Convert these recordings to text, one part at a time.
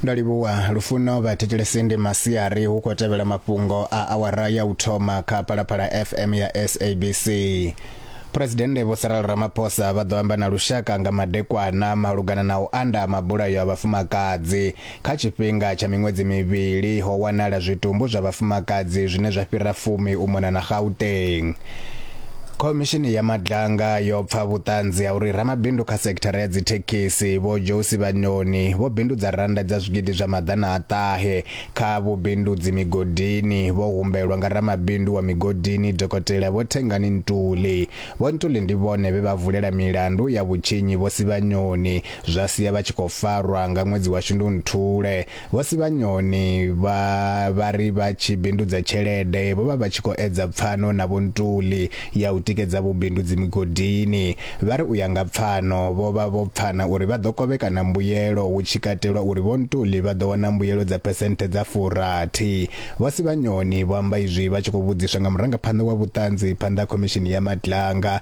ndo livhuwa lufuno vhathetshelesi ndi masiari hu khou tevhela mafhungo a awara ya u thoma kha phalaphala fm ya sabc phuresidennde vho saral ramaphosa vha ḓo amba na lushaka nga madekwana malugana na u anda mabulayo a vhafumakadzi Kha tshifhinga tsha miṅwedzi mivhili, ho wanala zwitumbu zwa vhafumakadzi zwine zwa fhira fumi u mona na Gauteng. Khomishini ya Madlanga yo pfa vhuṱanzi ha uri ramabindu kha sekithara ya dzithekhisi Vho Josi Vhanyoni vho bindudza rannda dza zwigidi zwa maḓana a ṱahe kha vhubindudzi migodini vho humbelwa nga ramabindu wa migodini Dokotela Vho Thengani Ntuli. Vho Ntuli ndi vhone vhe vha vulela milandu ya vhutshinyi Vho Sivhanyoni zwa sia vha tshi khou farwa nga ṅwedzi wa Shundunthule. Vho Sivhanyoni vha vha ri vha tshi bindudza tshelede vho vha vha tshi khou edza pfano na Vho Ntuli ya u tikedza vhubindudzi migodini. Vha ri u ya nga pfano vho vha vho pfana uri vha ḓo kovhekana mbuyelo hu tshi katelwa uri Vho Ntuli vha ḓo wana mbuyelo dza phesenthe dza furathi. Vho Sivhanyoni vho amba izwi vha tshi khou vhudziswa nga murangaphanḓa wa vhuṱanzi phanḓa ha Khomishini ya Matlanga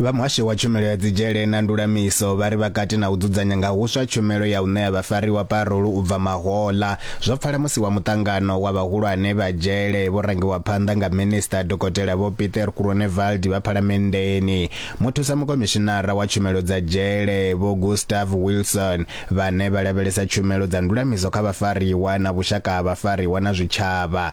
Vha muhasho wa tshumelo ya dzidzhele na ndulamiso vha ri vha kati na u dzudzanya nga huswa tshumelo ya u ṋea vhafariwa parolu u bva mahoḽa. Zwo pfala musi wa muṱangano wa vhahulwane vha dzhele vho rangiwa phanḓa nga Minisiṱa Dokotela Vho Pieter Groenewald vha Phalamenndeni, Muthusa Mukomishinara wa Tshumelo dza Dzhele Vho Gustav Wilson vhane vha lavhelesa tshumelo dza ndulamiso kha vhafariwa na vhushaka ha vhafariwa na zwitshavha.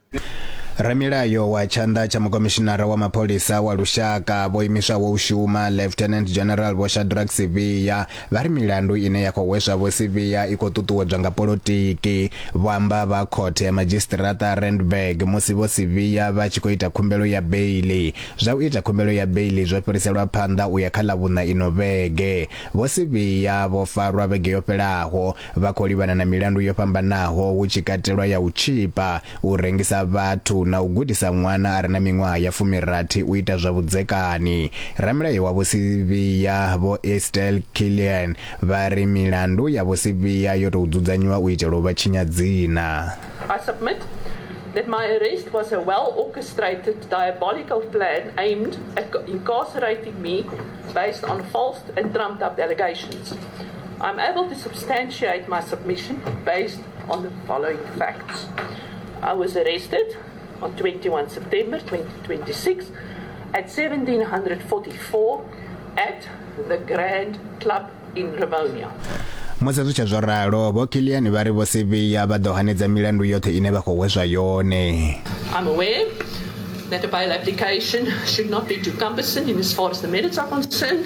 ramilayo wa tshanḓa tsha mukomishinara wa mapholisa wa lushaka vho imiswaho u shuma lieutenant general vho shadrack sivhiya vha ri milandu ine ya khou hweswa vho sivhiya i khou ṱuṱuwedzwa nga polotiki vho amba vha khothe ya madzhisiṱiraṱa randburg musi vho sivhiya vha tshi khou ita khumbelo ya beili zwa u ita khumbelo ya beili zwo fhiriselwa phanḓa u ya kha ḽa vhuṋa ino vhege vho sivhiya vho farwa vhege yo fhelaho Vha khou livhana na milandu yo fhambanaho hu tshi katelwa ya u tshipa, u rengisa vhathu na u gudisa ṅwana a re na miṅwaha ya fumirathi u ita zwa vhudzekani. Ramilayo wa Vho Sibiya, Vho Estelle Killian, vha ri milandu ya Vho Sibiya yo tou dzudzanyiwa u itela u vha tshinya dzina. I submit that my arrest was a well-orchestrated diabolical plan aimed at incarcerating me based on false and trumped-up allegations. I'm able to substantiate my submission based on the following facts. I was arrested on 21 September 2026 at 1744 at the Grand Club in Rivonia. musi zwi tshe zwo ralo vho kiliani vha ri vho sivhiya vha ḓo hanedza milandu yoṱhe ine vha khou hweswa yone I'm aware that a bail application should not be too cumbersome in as far as the merits are concerned.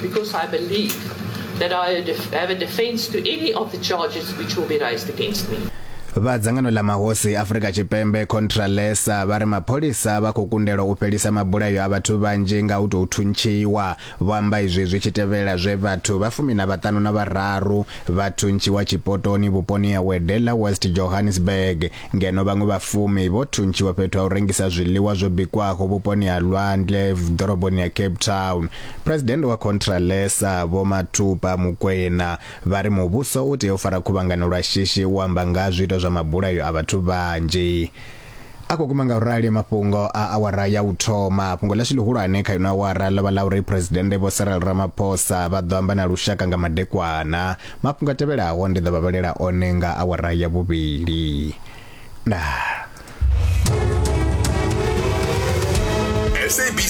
Because I believe that I have a defense to any of the charges which will be raised against me. vha dzangano ḽa mahosi Afrika Tshipembe Contralesa vha ri mapholisa vha khou kundelwa u fhelisa mabulayo a vhathu vhanzhi nga u tou thuntshiwa vho amba izwi zwi tshi tevhela zwe vhathu vha fumi na vhaṱanu na vhararu vha thuntshiwa tshipotoni vhuponi ha Wedella West Johannesburg ngeno vhaṅwe vhafumi vho thuntshiwa fhethu ha u rengisa zwiḽiwa zwo bikwaho vhuponi ha lwandle ḓoroboni ya cape town presidennde wa contralesa vho matupa mukwena vha ri muvhuso u tea u fara khuvhangano lwa shishi u amba nga ha zwiito zwa mabulayo a vhathu vhanzhi a khou guma nga u rali mafhungo a awara ya u thoma fhungo ḽashu ḽihulwane kha ino awara ḽo vha ḽa uri presidennde vho cyril ramaphosa vha ḓo amba na lushaka nga madekwana Mafhungo a tevhelaho ndi ḓo vha vhalela one nga awara ya vhuvhili. Ndaa.